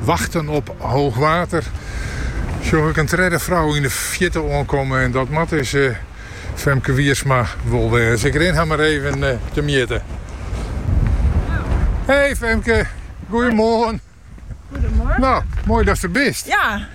Wachten op hoog water sjoch ik in tredde frou yn de fierte oankomme en dat moat dus Femke Wiersma wol wêze. Ik rin har mar even temjitte. Hey Femke, goeiemoarn. Goedemorgen. No, moai datst der bist. Ja.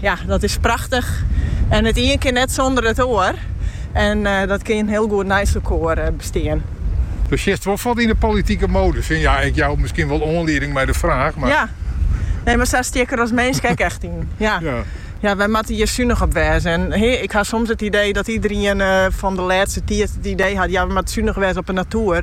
Ja, dat is prachtich. En it ien kin net sûnder it oar. En dat kin hiel goed neist elkoar bestean. Do sjitst wol fuort yn de politike modus yn. Ja, ik jou miskien wol oanlieding mei de fraach, mar. Ja, nee, mar sa stean ik der as minsk ek echt yn. Ja. Ja, wy moatte hjir sunich op wêze. En ik ha soms it idee dat iederien fan de lêste tiid it idee hat, ja, we moatte sunich wêze op de natoer.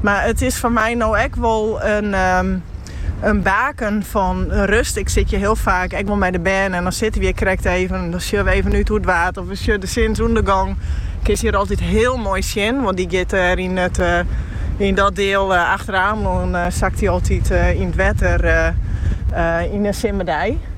Mar it is foar my no ek wol in baken fan rust. Ik sit hjir hiel faak ek wol mei de bern en dan sitte we hjir krekt even en dan sjogge we even út oer it Waad of we sjogge de sinsûndergong. Kinst hjir altyd hiel moai sjen, want dy giet dêr yn dat diel achter Amelân sakt dy altyd yn it wetter yn in simmerdei.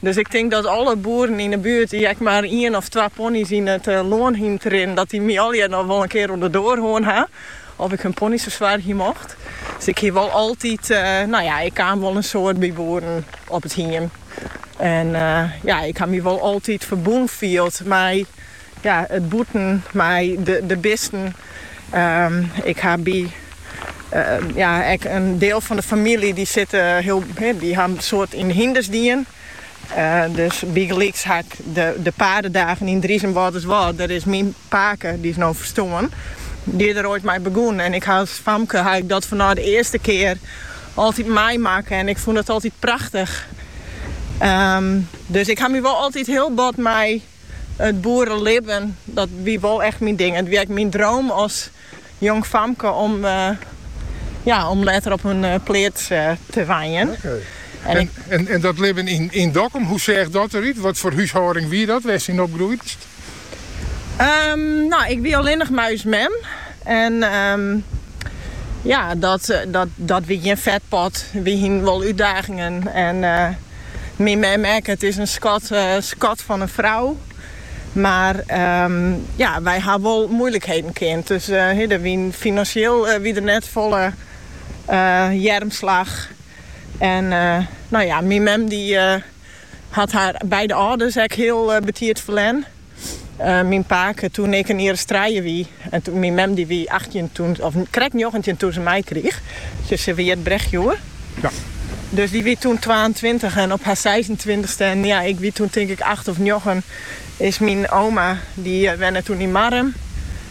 Dus ik tink dat alle boeren yn 'e buert dy't ek mar ien of twa pony's yn it lân hienen te rinnen, dat dy my allegear noch wol in kear oan 'e doar hân ha oft ik hun pony's fersoargje mocht. Dus ik hie wol altyd, no ja, ik kaam wol in soad by boeren op it hiem en ja, ik ha my wol altyd ferbûn field mei. Ja, it bûten mei de bisten. Ik ha by ja ek in deel fan de famylje dy sitte hiel dy ha in soad yn de hynders dien. Dus bygelyks ha ik de Paardendagen yn Driezum-Wâlterswâld. Dêr is myn pake, dy is no ferstoarn, dy is der oait mei begûn en ik ha as famke ha ik dat fanôf de earste kear altyd meimakke en ik fûn dat altyd prachtich. Dus ik ha my wol altyd hiel bot mei It boerelibben, dat wie wol echt myn ding. It wie ek myn droom as jong famke om ja, om letter op in pleats te wenjen. En, en, en, dat libben yn, yn Dokkum, hoe seach dat derút? Wat foar húshâlding wie dat, wêrst yn opgroeid bist? Ehm, no, ik wie allinnich mei ús mem. En ehm, ja, dat, eh, dat, dat wie gjin fetpot. Wy hien wol útdagingen. En eh, Myn mem ek, it is in skat, eh, skat fan in frou. Mar ehm, ja, wy ha wol moeilikheden kend. Dus eh, der wien finansjeel eh, wie der net folle eh, earmslach. En eh, no ja, myn mem dy eh, hat har beide âlders ek hiel eh, betiid ferlern. Eh, myn pake toen ik in jier as trije wie. En toen myn mem dy wie 18 toen, of krekt 19 toen se my kriich. Dus se wie het brechtjoer. Ja. Dus dy wie toen 22 en op har 26ste, en ja, ik wie toen tink ik 8 of 9, is myn oma, dy eh, wende toen yn Marrum.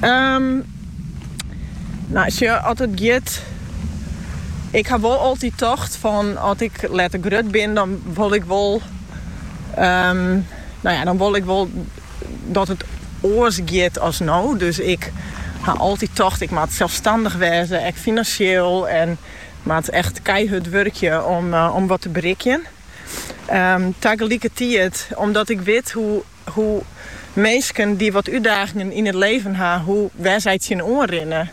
Ehm, nou, sjoch, as it giet. Ik ha wol altyd tocht fan as ik letter grut bin, dan wol ik wol. Ehm, nou ja, dan wol ik wol dat it oars giet als no. Dus ik ha altyd tocht, ik moat selsstannich wezen, ek finansjeel. En moat echt keihard wurkje om, eh, om wat te berikken. Um, ehm, tagelikertiid, omdat ik wit hoe Hoe minsken dy't wat útdagingen yn it leven ha, hoe wêr't sy tsjin oanrinne.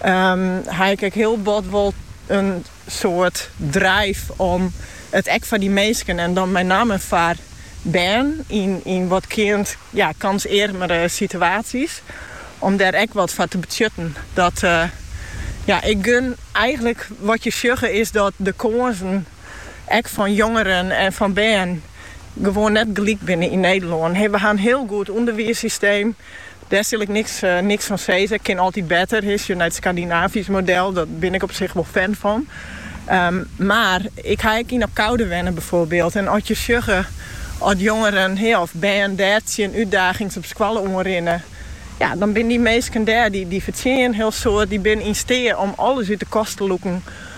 Ha ik ek hiel bot wol in soart drive om it ek foar dy minsken en dan mei namme foar bern yn wat, ja, kânsearmere situaties om dêr ek wat foar te betsjutten. Dat ik gun eigenlik wat je sjogge is dat de kânsen. ek fan jongeren en fan bern, gewoan net gelyk binne yn Nederlân. We ha in hiel goed ûnderwiissysteem, dêr sil ik niks fan sizze. It kin altyd better. As je nei it Skandinavysk model sjochst, dêr bin ik op sich wol fan fan. Mar ik ha ek yn Abcoude wenne byfoarbyld en as je sjogge as jongeren of bern dêr tsjin útdagings op skoalle oan rinne, ja, dan binne dy minsken dêr, dy fertsjinje in hiel soad, dy binne yn steat om alles út de kast te lûken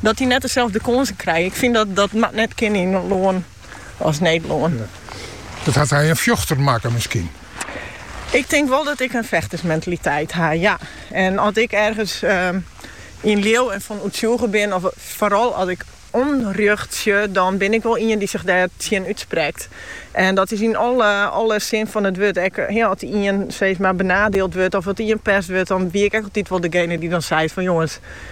dat dy net deselde kânsen krije. Ik fyn dat dat mei net kinne yn in lân as Nederlân. Dat hat dy in fjochter makke miskien? Ik tink wol dat ik in fjochtersmentaliteit ha, ja. En as ik ergens ehm, yn leau en fan oertsjûge bin, of foaral as ik ûnrjocht sjoch, dan bin ik wol ien dy't sich dêr tsjin útsprekt. En dat is yn alle, alle sin fan it wurd. Ek ja, as ien steeds mar benadeeld wurdt of as ien pest wurdt, dan wie ik ek altyd wol degene dy't dan seit fan jongens,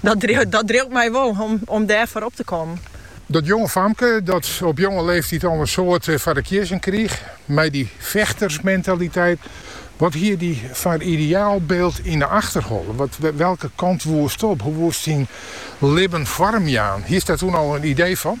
Dat driuwt my wol om dêr foar op te kommen. Dat jonge famke dat op jonge leeftyd al in soad foar de kiezzen krige mei dy fjochtersmentaliteit, wat hie dy foar ideaalbyld yn de achterholle? Welke kant woest op? Hoe woest dyn libben foarmjaan? Hiest dêr toen al in idee fan?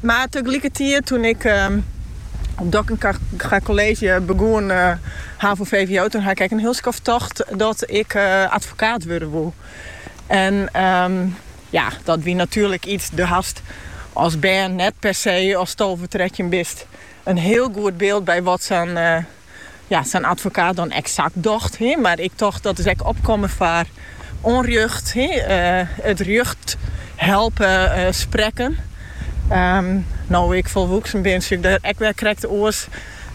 Mar tagelikertiid, toen ik op Dockinga College begûn, havo-vwo, toen ha ik ek in hiel skoft tocht dat ik advokaat wurde woe. En ja, dat wie natuerlik iets, do hast as bern net per se, ast tolve, trettjin bist, in hiel goed beeld by wat sa'n ja, sa'n advokaat dan eksakt docht. He, mar ik tocht dat is ek opkommen foar ûnrjocht, he, eh, it rjocht helpe eh, sprekken. Ehm, no ik folwoeksen bin, sjoch ik der ek wer krekt oars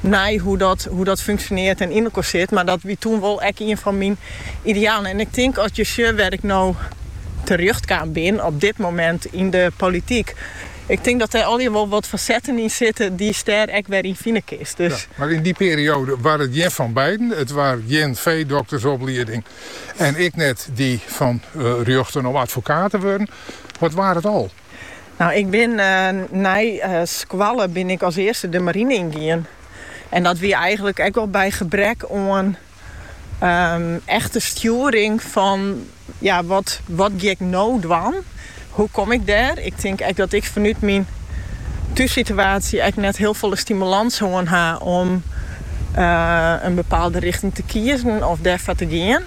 nei hoe dat, hoe dat funksjoneart en yn elkoar sit. Mar dat wie toen wol ek ien fan myn idealen. En ik tink as ik sjoch wêr't ik no terjochtkaam bin op dit moment yn de polityk, Ik tink dat dêr allegear wol wat fasetten yn sitte dy'tst der ek wer yn fine kinst. Ja, mar yn dy perioade war it gjin fan beiden. It war gjin feedoktersoplieding en ek net dy fan rjochten om advokaat te wurden. Wat waard it al? Nou, ik bin nei skoalle bin ik as earste de marine yn gien. En dat wie eigenlik ek wol by gebrek oan Ehm, echte stjoering fan, ja, wat, wat gie ik nou dwaan? Hoe kom ik dêr? Ik tink ek dat ik fanút myn thússituatie ek net hiel folle stimulans hân ha om eh, in bepaalde richting te kiezen of dêrfoar te gean.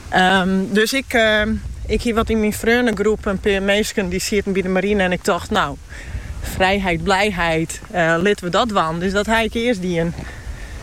Ehm, dus ik, eh, ik hie wat yn myn freondegroep in pear minsken die sieten by de marine en ik tocht, nou, vrijheid, blijheid, eh, litten we dat dwaan. Dus dat ha ik earst dien.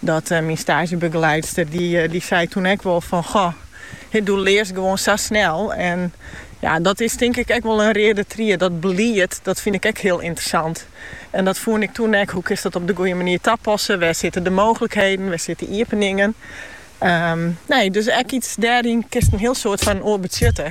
Dat myn staazjebegeleidster, dy sei toen ek wol fan, goh, do learst gewoan sa snel. En ja, dat is tink ik ek wol in reade tried. Dat belied, dat fyn ik ek hiel yntersant. En dat foen ik toen ek, hoe kinst dat op de goeie manier tapassen? Wêr sitte de mooglikheden, wêr sitte iepeningen? Ehm, nee, dus ek iets dêryn kinst in hiel soad foar in oar betsjutte.